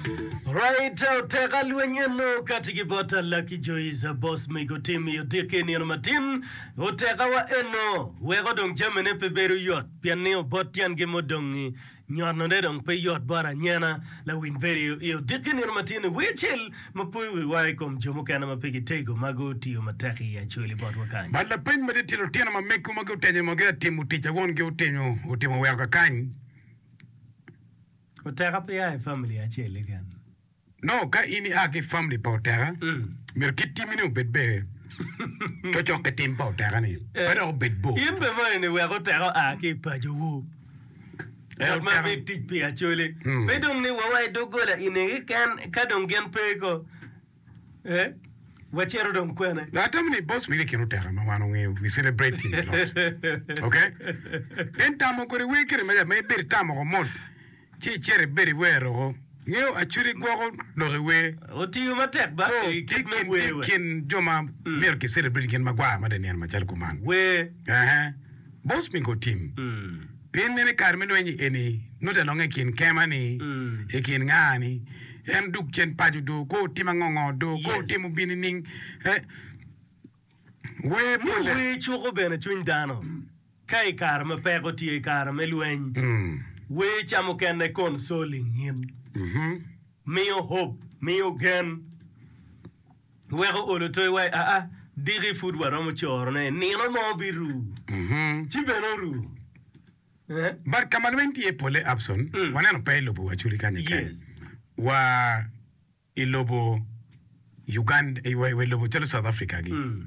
Right out teka lweny eno kati ki bot Alaki Joiza boss mege otim i odiki i nino matin oteka wa eno weko dong jami ne pe bedo yot pien ni obot tyen gi mudongi nyono ne dong pe yot bot anyena lawiny bedo i odiki nino matin i wi cel ma poyo wi wa i kom jo mukene ma pe gitego ma go tiyo matek i acholi bot wa kany. Bat lapeny ma dit-ti lutino ma megi ma gutenyo ma gia timo tic awon gi otenyo otimo weko kakany. Oteka pe ya i famili acel keken. Nongo ka in ia ki i famili pa Oteka, myero kit timmi-ni obed bene cocok ki tim pa Oteka-ni, pe dok obed bor. In bene moni ni wek Oteka oa ki i pacowu, ngat ma bed tic pi Acholi, pe dong ni wa wa i doggola i nge keken ka dong gin pe ko. Eh wacito dong kwene. Now atamo ni boss wili kin oteka ma wan ongeyo we celebrate him a lot ok then tamo kodi wer kene maja ma ibedo itamo ko mot ci icito ibedo iwero ko ngeyo acudi gwoko lok i wer Otiyo matek ba so i kit me wer wa. kin jo ma myero ki celebrate gin magwar mada i nino macalo kuman. Wer. Ehe boss me go team. Pien meno i kare me lweny eni, nut alonge i kin kema ni, i kin nga ni en duk cen paco do, ko otim angongo do, ko otim obin nining eh, wer mule. Ni wer cuko bene cwiny dano ka i kare ma peko tye, i kare me lweny, wer ca mukene consoling in, miyo hope, miyo gen. Weko olo toyi wa i aa, diki pud waromo corone, nino mo biru, ci bene oru. Eh? But ka ma lweny tye iye polle, Abson, Mm. waneno pe i lobo Aculi kany keken. Yes. Wa i lobo Uganda, wa i lobo calo South Africa gi. Mm.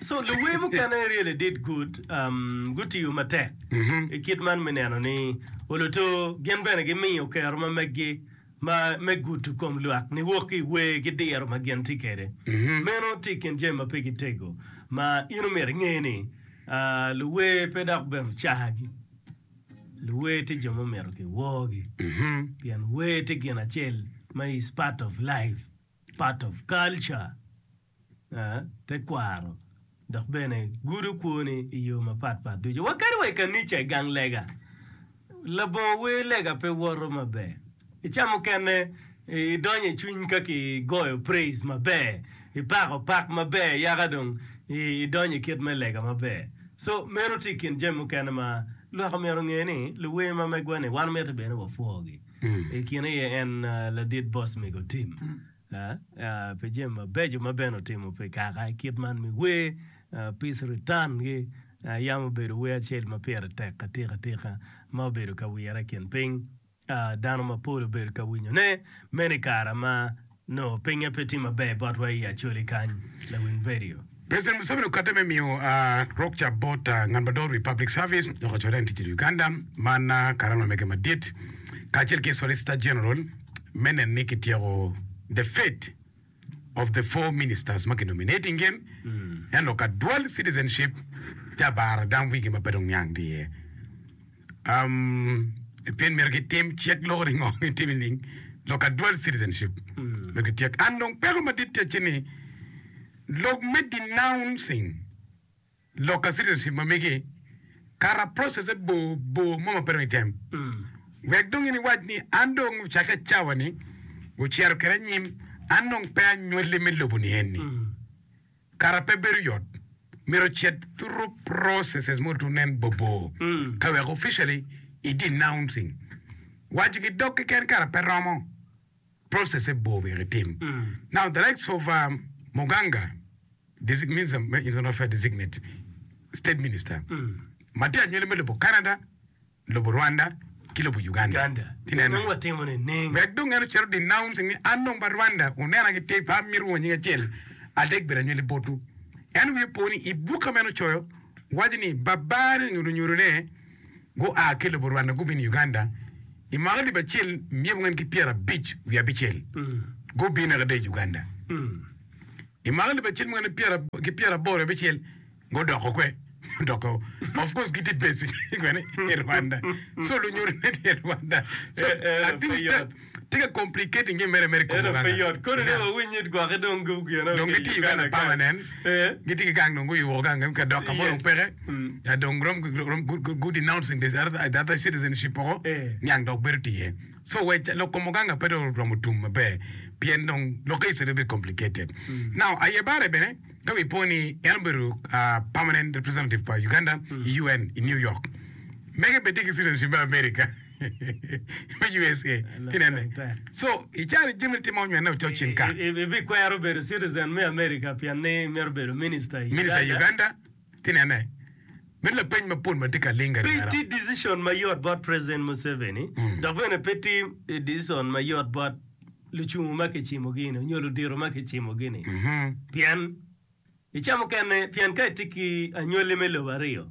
So luwe mukene really did good, gutiyo matek i kit man me neno ni oluto gin bene gimiyo kero ma meggi me gudo kom lwak niwok ki i wer ki diro ma gin tye kwede. Meno tye i kin jami ma pe gitego ma in omyero inge ni luwe pe dok bene cagi. Luwer tye jo ma omito kiworgi pien wer tye gin acel ma is part of life, part of culture, tekwaro dok bene gudo kwoni i yo mapat pat ducu. Wa kadi wa i kanica i gang lega, labongo wer lega pe woto maber. I ca mukene. Idonyo i cwiny ka ki goyo praise maber, ipako pak maber yaka dong idonyo i kit me lega maber. So meno tye i kin jami mukene ma lwak omyero onge ni luwer ma megwa ni wan mitte bene wapwogi. I kine aye en ladit boss mego tim pi jami mabeco ma bene otimo pi kaka i kit man me wer, peace return gi yam obedo wer acel ma pire tek atika tika ma obedo ka wire i kin piny. Dano mapol obedo ka winyone meno i kare ma nongo pinye pe tye maber botwa i Acholi kany. Lawiny Vedio. President Museveni okadde me miyo rok ca bot ngat madongo i wi Public Service dok ocoyo lain tic i Uganda man karani omege madit kacel ki Solicitor General me neno ni kityeko The Fed of the four ministers ma ki nominating gin en lok ka dual citizenship te abara dam wigi ma pe dong niang tye iye um, pien myero ki tim cik loko ni ngo mi timi ning lok ka dual citizenship myero ki tyek and dong peko madit tye ci ni lok me denouncing Lok ka citizenship ma migi, kara process-se bor bor mo ma pe dong item. Wek dong in iwac ni an dong ocakke cawa ni ocito kede anyim, an dong pe anywali me lobo ni eni. Kara pe bedo yot. Myero ocit through processes mo to nen bor bor ka wek officially i denouncing. Waco ki dog keken kara pe romo. process e bor myero itim. Now the likes of um, Muganga, desi, minister, internal affair designate, state minister, ma tye anywele me lobo Canada, lobo Rwanda, ki lobo Uganda. Uganda. Ki nena. Nongo watimo ne neng. Wek dong en ocito denouncing ni an dong ba Rwanda onena ki tir pa amito wongo nying acel adek bedo anywele botwu. En wiye po ni i buka ma en ocoyo, waco ni Babane onyuto nyuto ne, gua ki lobo Rwanda gubino i Uganda i mwaka alip acel myek ongen ki pyera abic wiye abicel. Gubino kede i Uganda i mwaka alip acel myek ongen ki pyera aboro wiye abicel gudoko kwe gudoko of course gitye based kwene i Rwanda so lunyodone tye i Rwanda so I think that Tika complicating gi mere mere koko gang gang? Dong gitye Uganda permanent, gitye ki gang dong guyu woko gang gi ka dok kamo dong peke ya dong rom gu denouncing the other citizenship woko niang dok bedo tye iye. So we lok komo gang ape dong oromo tum maber pien dong lokke is a little bit complicated. Now aye bare bene ka wi po ni en obedo permanent representative pa Uganda i UN i New York mege bene tye ki citizenship me America. me USA. Tinene. So, i cal-li jami nitimo onywene ocot cing ka. Ibikwero bedo citizen me America pien ni imito bedo minista i Uganda. Minista i Uganda. Tinene. Meno lapeny mapol ma tye ka ling gari Pe tye dicishon mayot bot President Museveni dok bene pe tye dicishon mayot bot lucungu ma kicimogi-ni nyo ludito ma kicimogi-ni pien i ca mukene pien ka itye ki anywalli me lobo aryo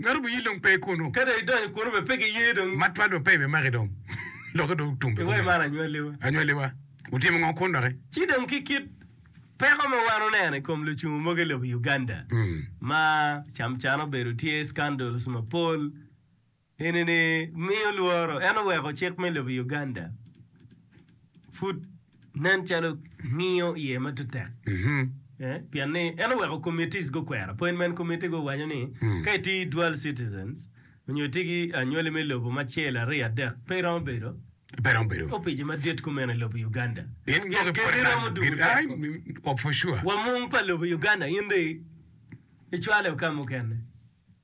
Ngato biyil dong pe kunu. Ka dong idonyo kunu bene pe giye dong. Matwal bene pe ibimaki dong. Lokke dong tum bene kumeno. Iwaco man anywaliwa. Anywaliwa. Wutimo ngo kun doki? Ci dong ki kit peko ma wan wuneno i kom lucungu mogo i lobo Uganda ma camcan obedo tye scandals mapol eni ni miyo lworo en oweko cik me lobo Uganda pud Nen calo ngiyo iye ma tut tek pien ni en oweko committees gukwero. Appointment committee go waco ni ka itye ki dual citizens onyo itye ki anywali me lobo macel, aryo, adek pe iromo bedo opice madit kumeno i lobo Uganda pien keni romo dugo teko. Wamung pa lobo Uganda in dong icwale oka mukene.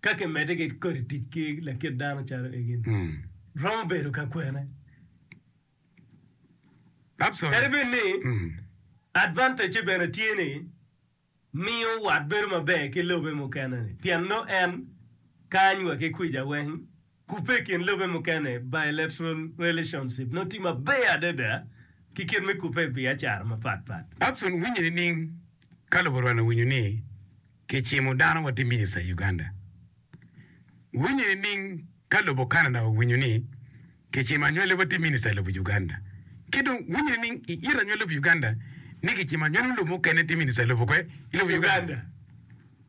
Ka kimedde ki kodi tic ki lakit dano calo egi-ni, romo bedo ka kwene. Kadi bed ni advantage-ce bene tye ni miyo wat bedo maber ki lobe mukene-ni pien nongo en kany wa ki kwica weng Kubbe i kin lobe mukene, Bilateral relationship, nongo tye maber adada ki kit me kubbe i biacara mapat pat. Abson winyo nining ka lobo rwano winyo ni kicimo dano watye minista i Uganda? Winyo nining ka lobo Canada owinyo ni kicimo anywali watye minista i lobo Uganda? Ki dong winyo nining i it anywali lobo Uganda ni kicimo anywali lobo mukene tye minista i lobo kwe? I lobo Uganda.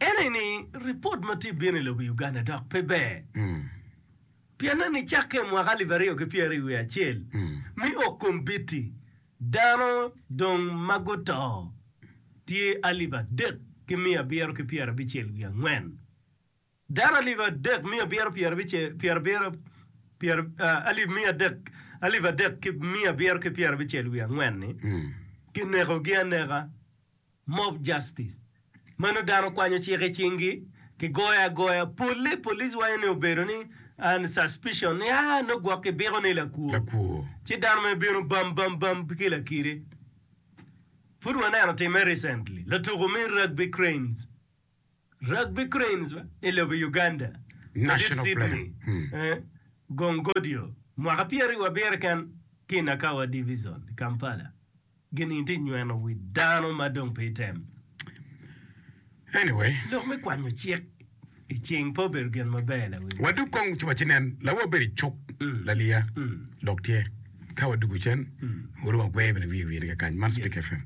Ene ni ripot ma tye bino i lobo Uganda dok pe ber. Pienne ni cakke i mwaka alip aryo ki pyeri wiye acel me ok kombiti, dano dong ma guto tye alip adek ki miya abiro ki pyera bicel wiye angwen. Dano alip adek miya abiro ki miya abiro ki pyera bicel wiye angwen ni ginekogi aneka. Mob Justice, Meno dano kwanyo cik i cingi, kigoyo agoya, polle police wanyo ni obedo ni and suspicion ni aa nongo gwok kibiko ni lakwor, Lakwor. ci dano mere bino bam bam bam ki lakiri. Pud waneno timme recently, latuku me Rugby Cranes. Rugby Cranes me lobo Uganda madit Sydney gong godio mwaka pyeraryo abiro keken ki i Nakawa Divizon i Kampala ginining tye nyweno wi dano ma dong pe item? Anyway. Lok me kwanyo cik i cing pe obedo gin maber lawil. Wadug kong ci wacinen lawa wabedo i cuk laliya dok tye ka wadug cen wuru wagwe bene wiye wiye ni kakany man Speak FM.